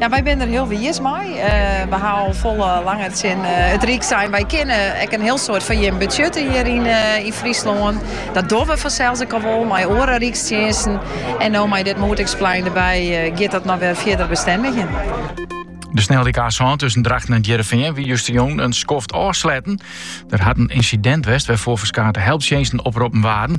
Ja, wy binne der hiel wiis mei. We ha al folle langer tsjin it Ryk sein, wy kinne ek in hiel soad foar jim betsjutte hjir yn Fryslân. Dat dogge we fansels ek al wol mei oare rykstsjinsten. En no mei dit Moederdyksplein derby giet dat noch wer fierder bestendigjen. De sneldyk A-sân tussen Drachten en Hearrenfean wie justerjûn in skoft ôfsletten. Der hat in ynsidint west wêrfoar ferskate helptsjinsten oproppen waarden.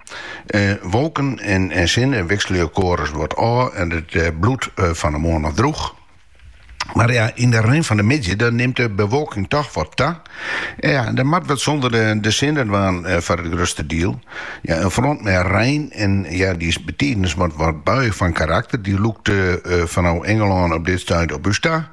Wolken en sinne wikselje elkoar sa wat ôf en it bliuwt fan 'e moarn ôf droech. Mar ja, yn de rin fan de middei dan nimt de bewolking toch wat ta. Ja, en dat moat wat sûnder de sinne dwaan foar it grutste diel. Ja, in front mei rein en ja, dy is betiden mei wat buiich fan karakter. Dy lûkt fanôf Ingelân op dit stuit op ús ta.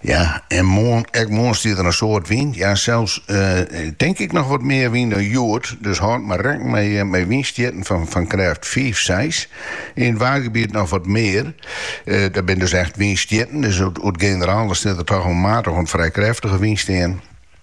Ja, en moarn, ek moarn stiet der in soad wyn, ja sels tink ik noch wat mear wyn dan hjoed, dus hâld mar rekken mei wynstjitten fan krêft fiif, seis. Yn it waadgebiet noch wat mear, dat binne dus echt wynstjitten, dus oer it generaal sil der toch al maatich oant frij krêftige wyn stean.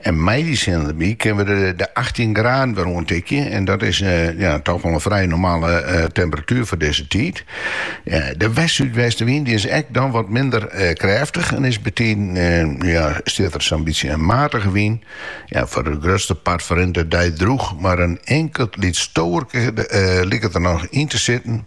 En mei dy sin derby kinne we de achttjin graden wer oantikje. En dat is ja, toch wel een vrij normale temperatuur voor deze tijd. de west-zuidwestenwind die is ek dan wat minder krêftig en is betiden ja, stiet er zo'n beetje een matige wyn. Ja, voor de grootste part verrint de dij droeg, maar een enkelt liet stoerke liket er nog in te zitten.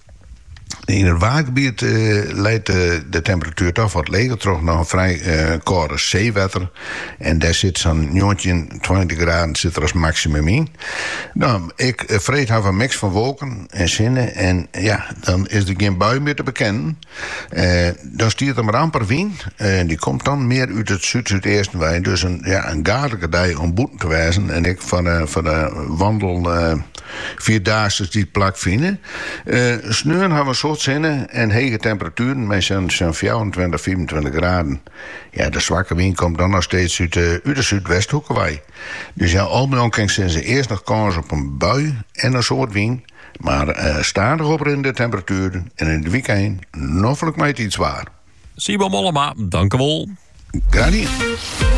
Yn it waadgebiet leit de temperatuer dochs wat leger troch noch in frij kâlde seewetter. En dêr sit sa'n njoggentjin, tweintich graden sit der as maksimum yn. No, ek freed hawwe we in miks fan wolken en sinne en ja, dan is der gjin bui mear te bekennen. Dan stiet der mar amper wyn, dy komt dan mear út it súd-súdeasten wei. Dus ja, in gaadlike dei om bûten te wêzen en ek foar de wandel. Fjouwerdaagses dy't plak fine. Sneon hawwe in soad sinne en hege temperatueren mei sa'n fjouwerentweintich, fiifentweintich graden. Ja, de swakke wyn komt dan noch steeds út de súdwesthoeke wei. Dus ja, al mei al kin sizze earst noch kâns op in bui en in soad wyn, mar stadich oprinnende temperatueren en yn it wykein noflik mei it fytswaar. Sebo Mollema, dankewol. Graach dien.